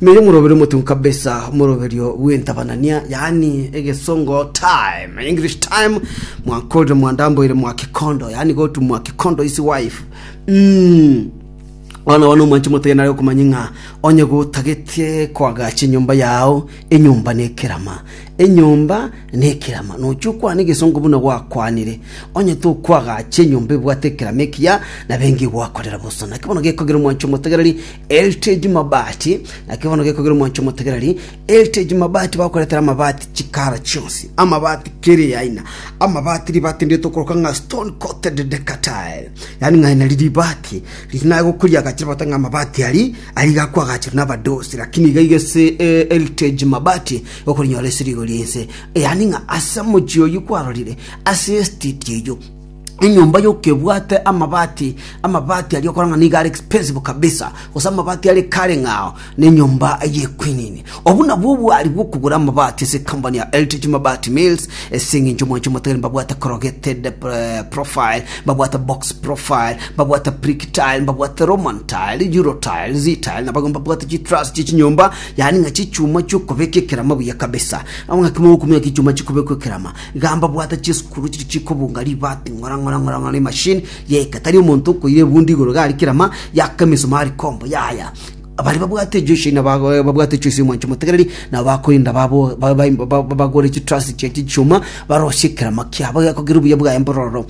Nere moroberio motuko kabisa, omoroberio bw'entabanania, yaani egesongo time, English time, mwakorire mwandamboire mwa kikondo, yaani go to mwa kikondo is wife. Mm. Bono bono omwanchi motoya nare okomanya ng'a onye gotagetie koagacha enyomba yao, enyomba nekerama. Enyomba nekerama, nochia okwane egesongo buna gwakwanire, onye tokwagacha enyomba ebwate ekerama ekiya, nabo engiya egwakorera bosa. Naki bono gekogira omwancho omotegereri, Heritage Mabati, naki bono gekogira omwancho omotegereri, Heritage Mabati bakoretera amabati chikara chionsi, amabati kera eaina, amabati ribati ndire tokoroka ng'a stone coated decker tile, yaani ng'a aye nari ribati riri naye gokoriagacha ribagote ng'a amabati aria Aiga kwagachirwe nabadosi, lakini iga iga ase Heritage Mabati okorinyora esiri igoro y'ense, yaani ng'a ase mochie oyio kwarorire ase esititi eyio enyomba yoka ebwate amabati amabati aria okora ng'a nigo are expensive kabisa gose amabati are kare ng'ao na enyomba y'equinini Obwo nabwo obwari bw'okogora amabati ase ekampani ya Eltech Mabati Mills, ase eng'encho omwancho omotagere mbabwate corrugated eh, profile, mbabwate box profile, mbabwate brick tile, mbabwate Roman tile, Euro tile, Z tile, na abagima mbabwate chitruss chie chinyomba, yaani ng'a chichuma chi'okobeka ekerama buya kabisa. Amo ng'a kemo okumenya ki chuma chikobekwa ekerama, iga mbabwate chisukuru chiria chikobunga ribaati ng'ora ng'ora ng'ora ng'ora emashini yaika. Tari omonto okoira ebundi igoro iga aria kerama, yaka emisumari combo, yaya. Abaria babwate chiosi nababwate chiosi omwanche omotegereri, nabo bakoenda bagore chitrasi chia chichuma, barosie ekerama kiabo gekogera obuya bwaye mbororo.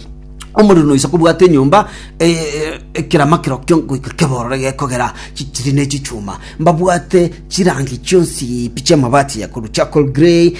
Omoriri noise kobwata enyomba ekerama kirokio ngoika kebororo gekogera chitiri ne chichuma. Mbabwate chirangi chionsi pi chiamabati ya korwa charcoal grey,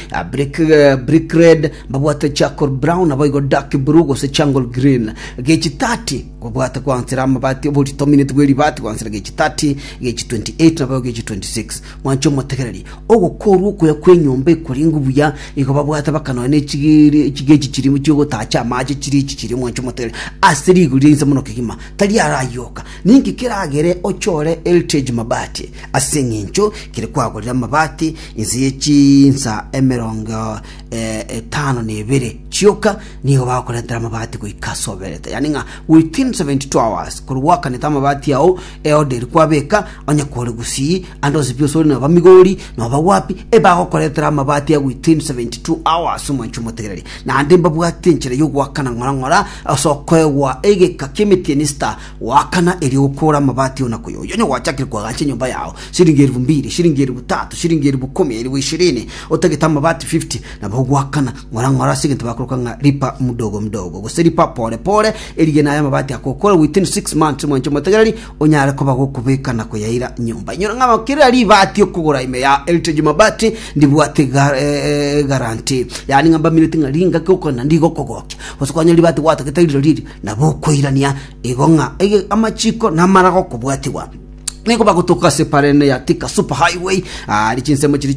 brick red, mbabwate charcoal brown, naboigo dark blue gose charcoal green. Gechitati Obwate kwansera amabati oborito omineti bwe ribaati gwansera gechi 30, gechi 28 na boigo gechi 26. Mwanche omotegereri, ogokoorwa okuya kw'enyomba ekorenge buya, igo babwate baka nonya ne chigiri chigechi chiria chi'ogotaacha amaache chiria echi chiria, mwanche omotegereri, ase rigori ria inse mono kegima, tari arayoka. Ninki keragere ochore Heritage Mabati? Ase engencho kere kwagorire amabati inse ye chinsa emerongo etano na ebere chioka nigo bagokorentera amabati goika ase oberete, yaani ng'a within 72 hours korwa gwakanete amabati ao eoderi kwabeka onye kore Gusii ande gose pi osore noba Migori noba wapi ebagokorentera amabati aya within 72 hours omwancho omotegereri. Naende mbabwate enchera ya ogoakana ng'ora ng'ora ase okoegwa egeka ki'emetienista Goakana erio okoore amabati onako yo, onye gwachakire koagacha enyomba yao, siringi erifu mbiri, siringi erifu tatu, siringi erifu ikomi, erifu ishirini, otagete amabati fifty, nabo ogoakana ng'ora-ng'ora ase egento bakoroka ng'a lipa mdogo mdogo, gose lipa pore pore, erigena aya amabati akokoora within six months, mwanche omotegereri, onyare koba gokobeka na koyaira nyomba. Inyora ng'a aba kera ribaati okogora ime ya Heritage Mabati, ndibwate ga- eh, guarantee, yaani ng'a mbamineti ng'a ringaki ogokora naende rigokogokia, gose kwanyora ribaati gwatagete rire riri, Nabo okoirania igo ng'a amachiko namara gokobwatigwa, nigo bagotoka ase Parenea, Tika, Super Highway, aria chinsemo chiria